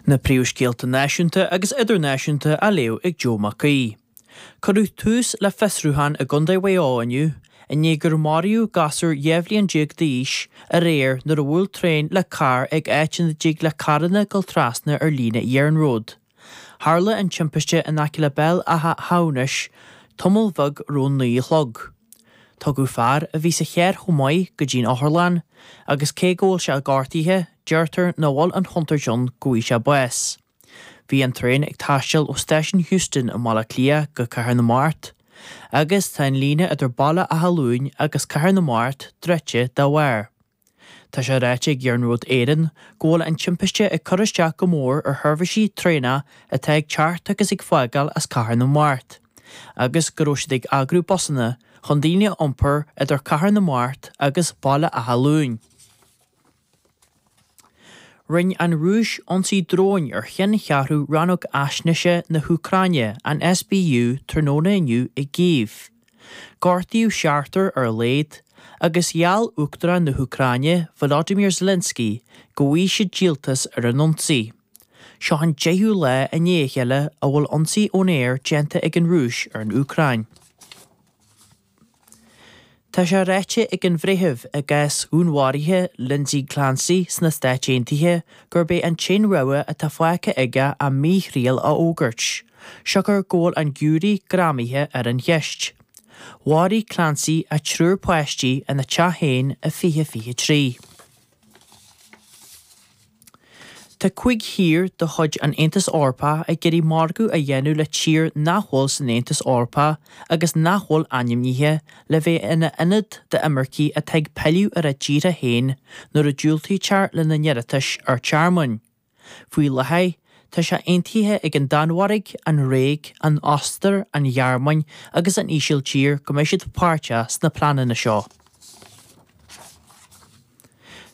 Na príomhscéalta náisiúnta agus idirnáisiúnta á léamh ag Joe Mhac Aoidh. Cuireadh tús le fiosrúchán i gCondae Mhaigh Eo inniu i ndiaidh gur maraíodh gasúr dhá bhliain déag d'aois aréir nuair a bhuail traein le carr ag áit ina dtig le carranna dul trasna ar líne iarnród. Tharla an timpiste in aice le Béal Átha hAmhnais tamall bheag roimh a naoi a chlog. Tugadh fear a bhí sa charr chomh maith go dtí an otharlann agus cé go bhfuil sé gortaithe deirtear nach bhfuil an chontúirt ann go bhfaighidh sé bás. Bhí an traen ag taisteal ó Stáisiún Heuston i mBaile Átha Cliath go Cathair na Mart agus tá an líne idir Baile Átha Luain agus Cathair na Mart druidte dá bharr. Tá sé ráite ag Iarnród Éireann go bhfuil an timpiste ag cur isteach go mór ar sheirbhísí traenach atá ag teacht agus ag fágáil as Cathair na Mart, agus go raibh siad ag eagrú busanna chun daoine a iompar idir Cathair na Mart agus Baile Átha Luain. Rinne an Rúis ionsaí dróin ar cheanncheathrú Rannóg Fhaisnéise na hÚcráine, an SBU, tráthnóna inniu i gCív. Gortaíodh seachtar ar a laghad, agus gheall Uachtarán na hÚcráine Volodymyr Zelensky go bhfaighidh sé díoltas ar an ionsaí. Seo an deichiú lá i ndiaidh a chéile a bhfuil ionsaí ón aer déanta ag an Rúis ar an Úcráin. Tá sé ráite ag an bhreitheamh i gcás dhúnmharaithe Lindsay Clancy sna Stáit Aontaithe gurb é an t-aon rogha atá fágtha aige a míthriail a fhógairt. siocair go bhfuil an giúiré greamaithe ar an gceist. Mharaigh Clancy a triúr páistí ina teach féin i 2023. Tá cúig thír de chuid an Aontais Eorpaigh ag iarraidh margadh a dhéanamh le tír nach bhfuil san Aontas Eorpach agus nach bhfuil ainmnithe le bheith ina ionad d'imircigh atá ag pilleadh ar a dtíortha féin nuair a diúltaítear lena n-iarratais ar thearmann. Faoi láthair, tá sé aontaithe ag an Danmhairg, an Ghréig, an Ostair, an Ghearmáin agus an Ísiltír go mbeidh siad páirteach sna pleananna seo.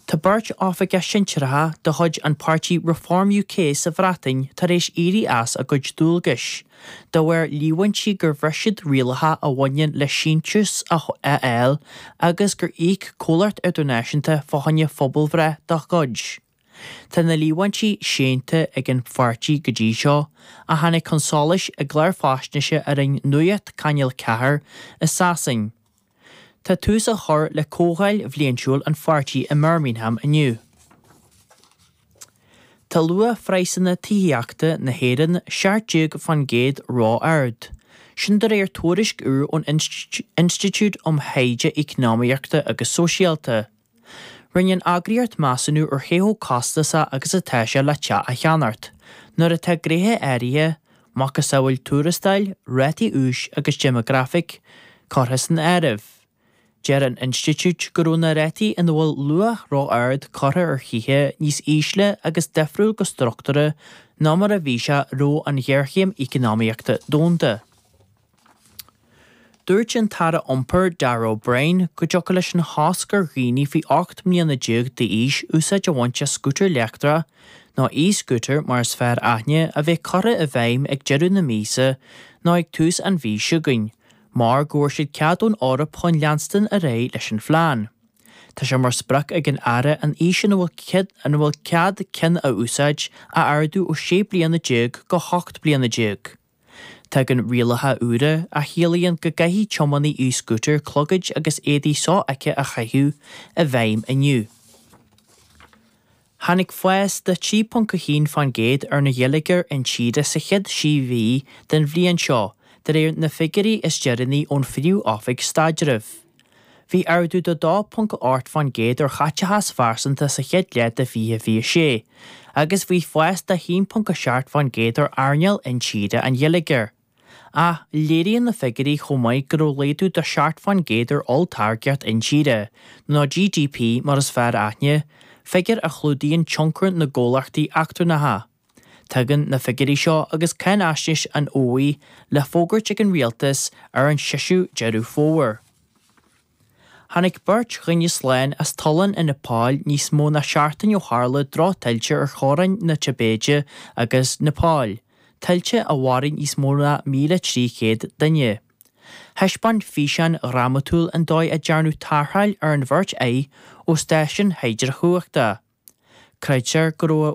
Tá beirt oifigeach sinsearacha de chuid an pháirtí Reform UK sa Bhreatain tar éis éirí as a gcuid dualgais, de bharr líomhaintí gur bhris siad rialacha a bhaineann le síntiús a fháil agus gur íoc comhlacht idirnáisiúnta fá choinne pobalbhreith dá gcuid. Tá na líomhaintí séanta ag an pháirtí go dtí seo, a tháinig chun solais i gclár faisnéise a rinne Nuacht Channel 4 i Sasain. Tá tús á chur le comhdháil bhliaintiúil an pháirtí i mBirmingham inniu. Tá luach phraghsanna tithíochta na hÉireann 17% ró-ard. Sin de réir tuairisc úr ón Institiúid um Thaighde Eacnamaíochta agus Sóisialta. Rinne an eagraíocht measúnú ar cé chomh costasach agus atá sé le teach a cheannacht, nuair atá gnéithe áirithe, macasamhail tuarastail, rátaí úis agus déimeagrafaic, curtha san áireamh. Deir an Institiúid go raibh na rátaí ina bhfuil luach ró-ard curtha ar thithe níos ísle agus difriúil go struchtúrtha ná mar a bhí sé roimh an ghéarchéim eacnamaíochta domhanda. Dúirt an tAire Iompair, Darragh O'Brien, go dtiocfadh leis an chosc ar dhaoine faoi 18 mbliana d'aois úsáid a bhaint as scútar leictreach, nó e-scooter mar is fearr aithne, a bheith curtha i bhfeidhm ag deireadh na míosa nó ag tús an mhí seo chugainn mar go bhfuair siad cead ón Eoraip chun leanstan ar aghaidh leis an phlean. Tá sé mar sprioc ag an Aire an aois ina bhfuil cead ceann a úsáid a ardú ó 16 bliana go 18 bliana. Tagann rialacha úra a chiallaíonn go gcaithfidh tiománaí e-scooter clogaid agus éadaí so-fheicthe a chaitheamh i bhfeidhm inniu. Tháinig fás de 3.1 fán gcéad ar an gheilleagar intíre sa chéad sé mhí den bhliain seo, de réir na figiúirí is deireanaí ón Phríomh-Oifig Staidrimh. Bhí ardú de 2.8 fán gcéad ar chaiteachas phearsanta sa chéad leath de 2026, agus bhí fás de 1.7 fán gcéad ar earnáil intíre an gheilleagair. Ach léiríonn na figiúirí chomh maith go raibh laghdú de seacht fán gcéad ar olltáirgeacht intíre, nó GDP mar is fearr aithne, figiúr a chlúdaíonn tionchar na gcomhlachtaí eachtrannacha. Tagann na figiúirí seo agus cáinaisnéis an oíche le fógairt ag an Rialtas ar an 6ú Deireadh Fómhair. Tháinig beirt dhuine slán as tollán i Nepal níos mó ná seachtain ó tharla drochthuilte ar theorainn na Tibéide agus Nepal, tuilte a mharaigh níos mó ná 1,300 duine. Thaispeáin físeán dhrámatúil an dóigh a dearnadh tarrtháil ar an bheirt acu ó stáisiún hidreachumhachta. Creidtear go raibh.